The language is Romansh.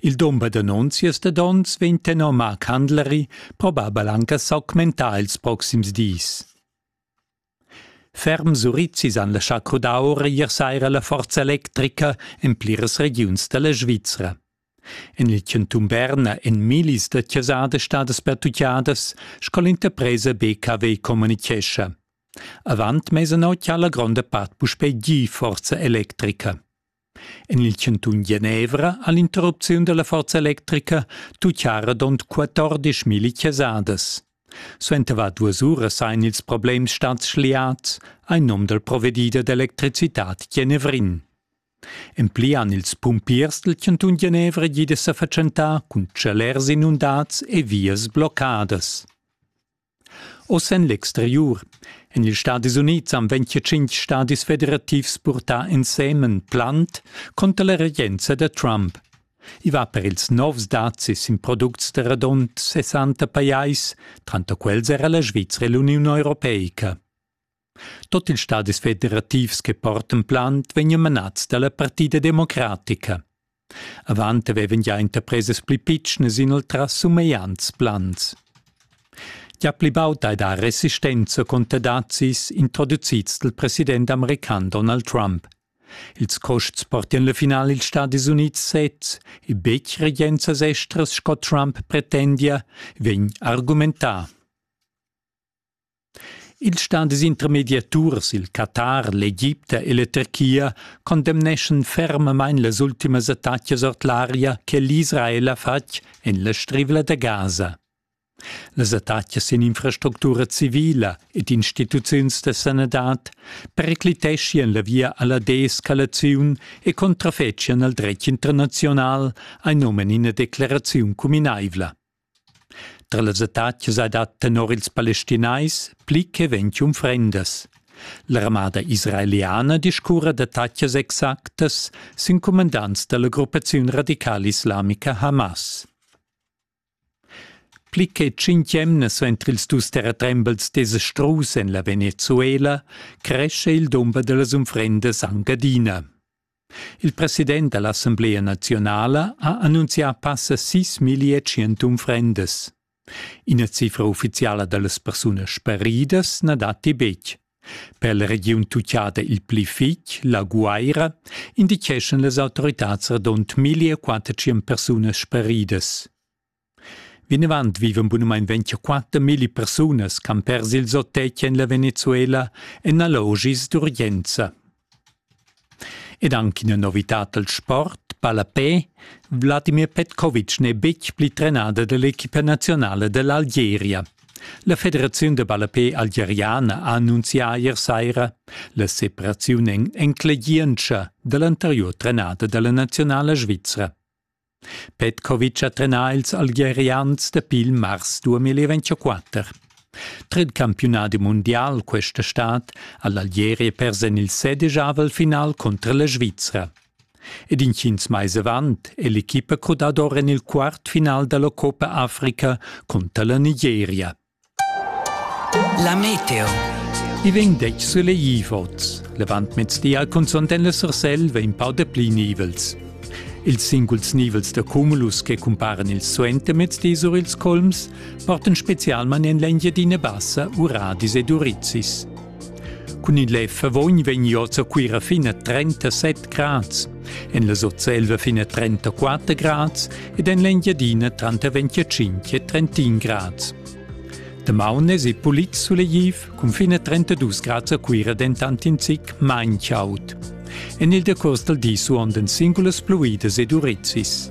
Il dumber d'annunzias dad onns vegn tenor Marc Handleri probabel anc a s'augmentar ils proxims dis. Ferm surizis han laschà crudar ora ier saira la forza electrica en pliras regiuns da la Svizra. En il chantun Berna èn millis da chasadas stadas pertutgadas, sco l'interpresa BKW communichescha. Avant mesa notg ha la gronda part puspè gì forza electrica. En il chantun Genevra ha l'interrupziun da la forza electrica tutgà radund 14.000 chasadas. Suenter var duas uras sajan ils problems stads schliads en num dal provedider d'electricitad genevrin. En pli han ils pumpiers del chantun Genevra gida sa fatschentà cun tschalers inundads e vias bloccadas. Oz en l'exteriur. En ils Stadis Unids han 25 stadis federativs purtà ensemen plant conter la regenza da Trump. I va per ils novs dazis in products da radund 60 pajais, tranter quels era la Svizra e l'Uniun Europeica. Tot ils stadis federativs che portan plant vegnan manats dalla partida democratica. Avant avevan gia interpresas pli pitschnas inoltrà sumegliants plans. Ja pli baud hai dà resistenza conter dazis introducids dal president american Donald Trump. Ils costs portian la final ils Stadis Unids sez e betg regenzas estras sco Trump pretendia, vegn argumentà. Ils stadis intermediaturs, il Qatar, l'Egipta e la Turchia, condemneschan fermamain las ultimas attacas ord l'aria che l'Israel ha fatg en la Strivla da Gaza. Las attacas en infrastructura civila ed instituziuns da sanadad pericliteschian la via a la deescalaziun e contrafetschian al dretg internaziunal, ha num en ina declaraziun cuminaivla. Tra las attacas hai dat tenor ils Palestinais pli che ventg unfrendas. L'armada israeliana discurra d'attacas exactas sin cumandants da la gruppaziun radicala islamica Hamas. Pli che tschintg emnas entr ils dus terratrembels desastrus en la Venezuela cresce il dumber da las unfrendas anc adina. Il president da l'Assamblea naziunala ha annunzià passa sis millia tschient unfrendas. Ina cifra uffiziala da las persunas sparidas na datti betg. Per la regiun tucciada il pli fitg, la Guaira, indicheschan las autoritads radund 1400 persunas sparidas. Vinavant vivan bunamain 24 milli persunas ch'han pers ils otg en la Venezuela en allogis d'urgenza. Ed anche ina novitad dal sport, Palapé, Vladimir Petkovic n'è betg pli trenada dall'equipa nazionala dall'Algeria. La federaziun da ballapé algeriana ha annunzià ier saira la separaziun en enclegientscha dall'anteriur trenada dalla nazionala svizra. Petkovic ha trenà ils Algerians dapi il mars 2024. Tret campiunadi mundial questa stad ha l'Algeria pers en il sedijavel final cunter la Svizra. Ed intgins mais avant è l'equipa crudada or en il quart final da la Coppa Africa cunter la Nigeria. La meteo. I vegn detg sulegl oz. Levantmezdi al cunzont en la Sursel vegn pau de pli nivels. Ils singuls nivels da cumulus che cumparen il suentermezdi sur ils colms portan specialmain en l'Engiadina Bassa uradis ed urizis. Cun il lev Favogn vegn oz a Cuira fin a 37 grads, en la Sotselva fin a 34 grads ed en l'Engiadina tranter 25 e 31 grads. Damaun esi pulit sulegtiv cun fin a 32 grads a Cuira dentant in zic main chaud. En il decurs dal di suondan singulas pluidas ed urizis.